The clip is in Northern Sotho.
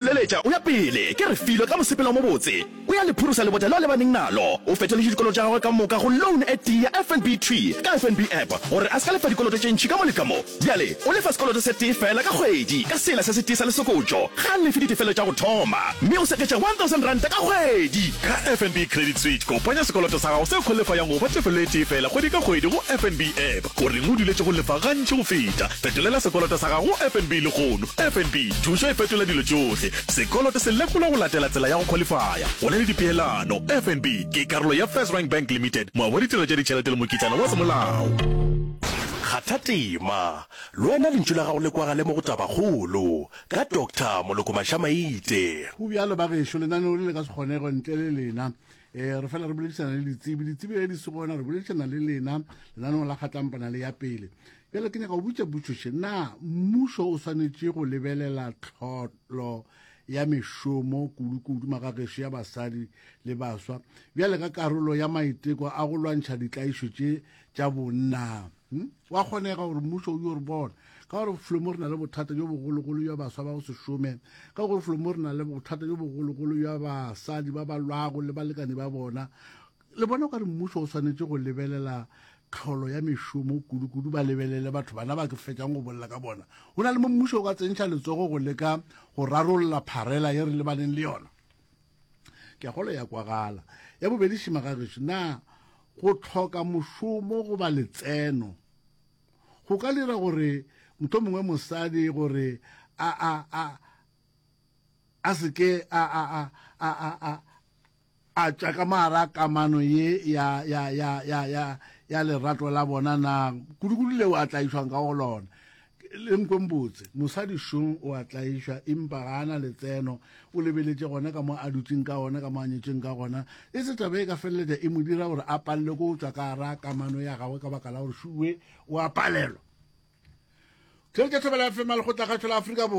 Leletša, o ya pele, ke re Filo ka mosepelo o mobotse, o ya le phurusa lebota leo a lebaneng nalo. O fetoletše dikoloto tša gagwe ka moka go loan e tee ya FNB Tree ka FNB App gore a se ka lefa dikoloto tše ntši ka mo le ka mo. Bjale o lefa sekoloto se tee feela ka kgwedi ka sela se se tee sa lesokotšo. Ga a lefe ditefelo tša go thoma, mme o seketša R1,000 ka kgwedi. Ka FNB Credit Switch, kopanya sekoloto sa gago seo kgolefayang go fa tefelo e tee feela kgwedi ka kgwedi go FNB App. O reng o duletše go lefa gantši go feta? Fetolela sekoloto sa gago go FNB lehono. FNB, thušo e fetola dilo tšohle. Sekoloto se lekolwa go latela tsela ya go khwalifaya. Go na le dipeelano. FNB ke karolo ya FirstRand Bank Limited, moabi wa ditirelo tša ditšhelete le mokitlana wa semolao. Kgatha tema, lwena lentšu la gago le kwagale mo go Tabakgolo, ka Doctor Moloko Mashamaite. Go bjalo, bagešo, lenaneo le le ka se kgonegwe ntle le lena. e re fela re boledišana le ditsebi ditsebi ge di se gona re boledišana le lena lenaneo la kgatlampana le ya pele bjale ke nyaka go butša butšoše na mmušo o swanetše go lebelela tlholo ya mešomo kudu-kudu magagešo ya basadi le baswa bjale ka karolo ya maiteko a go lwantšha ditlaišo tše tša bonna Hmm? wa kgonega gore mmušo o yo re bona ka gore flomo re na le bothata jo bogologolo jwa baswa ba go se šome ka gore flomo re na le bothata jo bogologolo jwa basadi ba ba lwago le balekane ba bona le bona ka re mmušo o swanetše go lebelela tlholo ya mešomo kudu-kudu ba lebelele batho bana ba ke fetšang go bolela ka bona go na le mo mmušo o ka tsentšha letsogo go leka go rarolla pharela ye re lebaneng le yona ke a kgolo ya kwagala ya bobedi šima ga gešo na go tlhoka mošomo goba letseno go ka dira gore motho mongwe mosadi gore a a a a se ke a a a a a a a tša ka mara kamano ye ya ya ya ya ya ya lerato la bona na kudu-kudu leo a tlaišwang ka go lona Le nkwen botse, mosadi šong o a tlaišwa, impa ga a na letseno. O lebeletše gona ka mo a dutšeng ka gona, ka mo a nyetšweng ka gona. E se taba e ka feleletša e mo dira gore a palelwe ke go tšwa ka gara kamano ya gagwe ka baka la gore šuwe o a palelwa. Therešo Thobela FM, Lekgotlakgašo la Afrika Borwa.